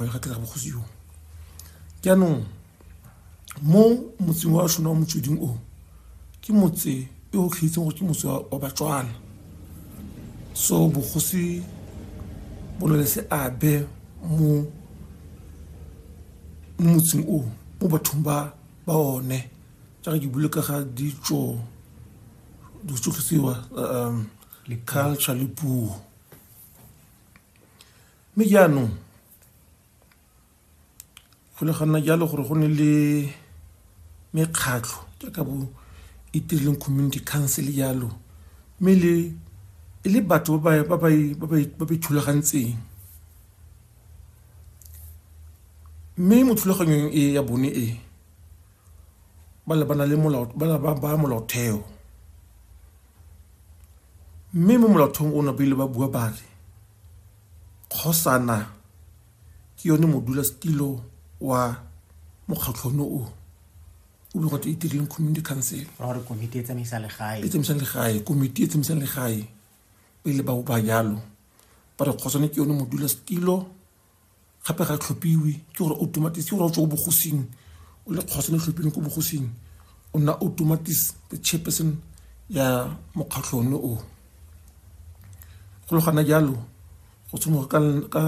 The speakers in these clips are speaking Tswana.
ba le ka tlera bogosi jo jaanong mo motseng wa shona wa motsweding o ke motse e o tlhaitseng gore ke motse wa batswana so bogosi bo na le seabe mo mo motseng o mo bathong ba ba one jaaka ke bule ka ga ditso ditsotlhisiwa um culture le puo mme jaanong go le ganna jalo gore go ne le mekgatlho jaaka bo itirileng community council jalo mme le e le batho ba ba ba ba ithulagantseng mme mo thulaganyong e ya bone e ba lebana le molao ba ba molaotheo mme mo molaotheong o ne ba ile ba bua ba re Kgosana ke yone modulasetilo wa mokgatlhono o o bile gote itireng community council gore komiti e tsamaisa legae e tsamaisang legae komiti e tsamaisang legae pele ba ba jalo ba re kgosane ke yone modulasetilo gape ga tlhophiwe ke gore automatis ke gore o tswa ko bogosing o le kgosa le tlhophileng ko bogosing o nna automatis the chairperson ya mokgatlho one o go le gana jalo go tshimoga ka ka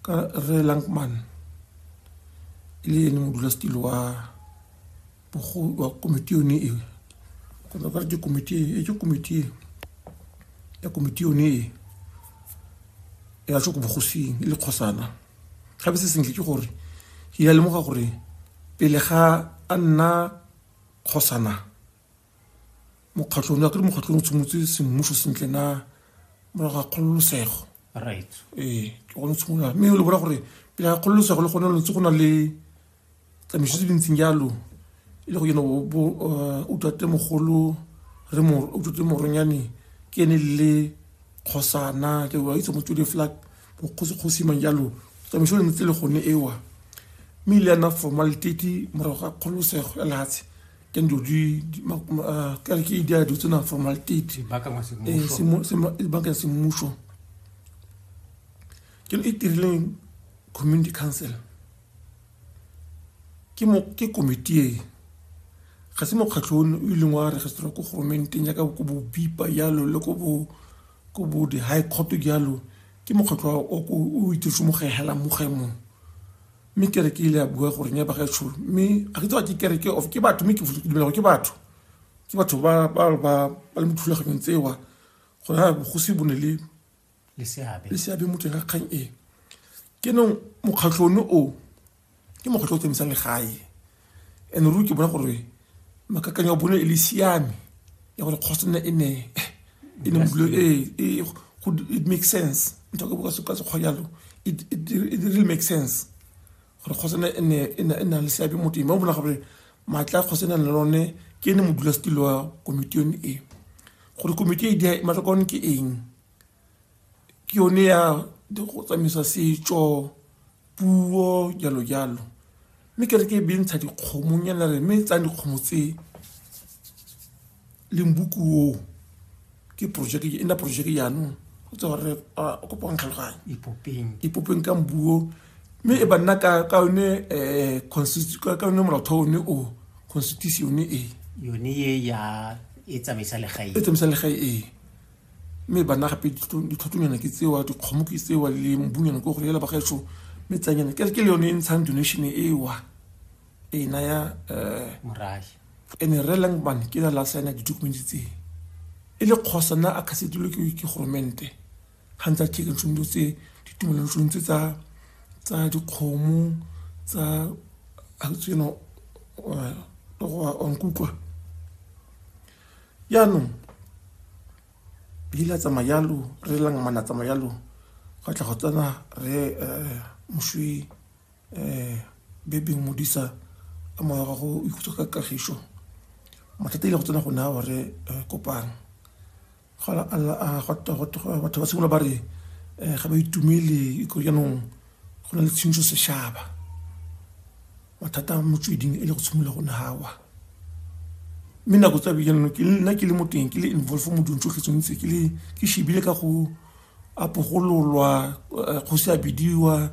ka re lankman e le ene modulasetilo wa Bokgoni wa komiti yone e kgotsa ka ke komiti e ke komiti e ya komiti yone e ya tsho ko bogosing e le kgosana gape se sentle ke gore ke ya lemoga gore pele ga a nna kgosana mokgatlhong ya kere mokgatlhong o tshimotse semmuso sentle na morago ga kgololosego right ee ke gone tshimolola mme o le bona gore pele ga kgololosego le gone lo ntse go na le tsamaiso tse dintseng jalo e le go yone bo uh, utlwate mogolo re utlwate moronyane ke ene le kgosana ke wa itse mo tsodi flag bokgosikgosi mang jalo tsamaiso le ntse le gone ewa mme ile yana formal tete morago ga kgololosego ya lehatshe ke ndo di uh, ke re ke di a dutse na formal tete banka ya semmuso ke e tirileng community council ke mo ke komiti e ga se mokgatlho o o ileng wa registrwa ko goromenteng yaka ko bo bipa yalo le ko bo ko bo di high court yalo ke mokgatlho o o itirse mo ga hela mo ga mo mme kere ke ile ya bua gore nya ba ga tsho mme ga ke tsewa ke kere ke of ke batho mme ke futle ke dumela ke batho ke batho ba ba ba ba le mothulaganyong tsewa go na go se bone le le seabe le seabe mo teng ga kgang e ke nong mokgatlho one o ke mokgatlho o tsamaisang legae and ruri ke bona gore makakanyo a bone e le siame ya gore kgosi nna e ne e ne modulo e, e it makes sense ntho ka boka ka sekgwa jalo it, it, it really makes sense gore kgosana e ne e na le seabe mo teng ba bona gore maatla kgosana e na le lone ke ene modulasetilo wa komiti yone e gore komiti e di matlhoko one ke eng ke yone ya go tsamaisa setso puo jalo jalo mme ke re ke e bentsha dikgomong yana re mme e tsayang dikgomo tsee limbuku o ke project e nna project jaanong go tse gore o kopa go ntlhaloganya ipopeng ka mbuo mme e banna ka ka yone eh, ka yone molaotheo one o constitution e yone e ya e tsamaisa legae e tsamaisa legae e mme banna gape ditlhotlonyana ke tsewa dikgomo ke tsewa le mbunyana ko go lela bagaetsho mme tsanyana ke le yone e ntshang donation ewa e naya eh, morahi ene re langman ke na la saena ditokumente tse e le kgosa na a khasedilwe ke ke goromente ga ntse a chekan tsono dilo tse ditumelano tsono tse tsa tsa dikgomo tsa tseno onkutlwa yaanong leile a tsamaya yalo re langmana tsamaya yalo go tla go tsena re um moswi um bebe modisa a moya ga go ikhutsa ka kagišo mathata ile go tsena go naya gore eh, kopang gona ah, batho ba simolola ba re eh, ga ba itumele iko jaanong go na le tshintso sešaba mathata a motsweding e le go tshimolola go nawa mme nako tsa bejanong nna ke le mo teng ke le involve mo dilong tsotlhe tsontse ke le ke shebile ka go apogololwa eh, kgosi a bidiwa